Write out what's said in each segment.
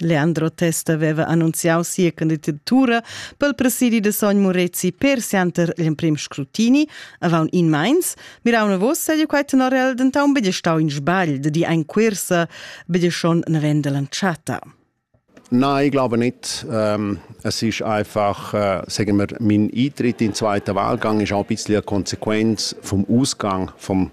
Leandro Testa aveva annunziau sia candidatura pel presidi da sogn Murezi per sianter gl'emprim scrutini. Avant in meins miraun vos seigi quei tenorel denton betg stau in sbagl de di ein quersa betg schon navenda l'entschatta. Nein, ich glaube nicht. Ähm, es ist einfach, äh, sagen wir, mein Eintritt in den zweiten Wahlgang ist auch ein bisschen eine Konsequenz vom Ausgang vom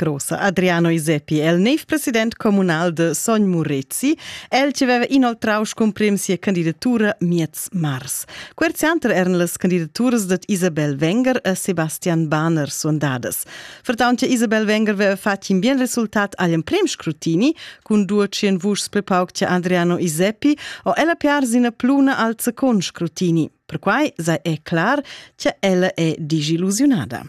Grossa Adriano Iseppi è il nev president communal de Sogn Murezi, el che veva inoltrau scumprim sia candidatura miez mars. Quer zianter eran las candidaturas dat Isabel Wenger e Sebastian Bahner sondadas. Vertaunt che Isabel Wenger veva fatg in bien resultat agl emprem scrutini, cun duecien vuschs prepauc che Adriano Iseppi, o ella piar sina pluna al second scrutini. Perquai sei è clar che ella è disillusionada.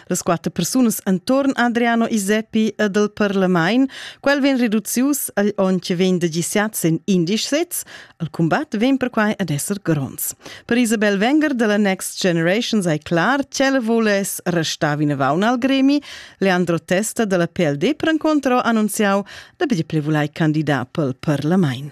Las quatter persunas entorn Adriano Iseppi ed el Parlamain, quel vegn reducius agl onn che vegn da gisiat sin indisch sets, il combat vegn perquai ad esser gronds. Per Isabel Wenger della Next Generation sei clar ch'ella voless restar vinavon al gremi. Leandro Testa della PLD per incontro annunziau da betg plevulai candidat pel Parlamain.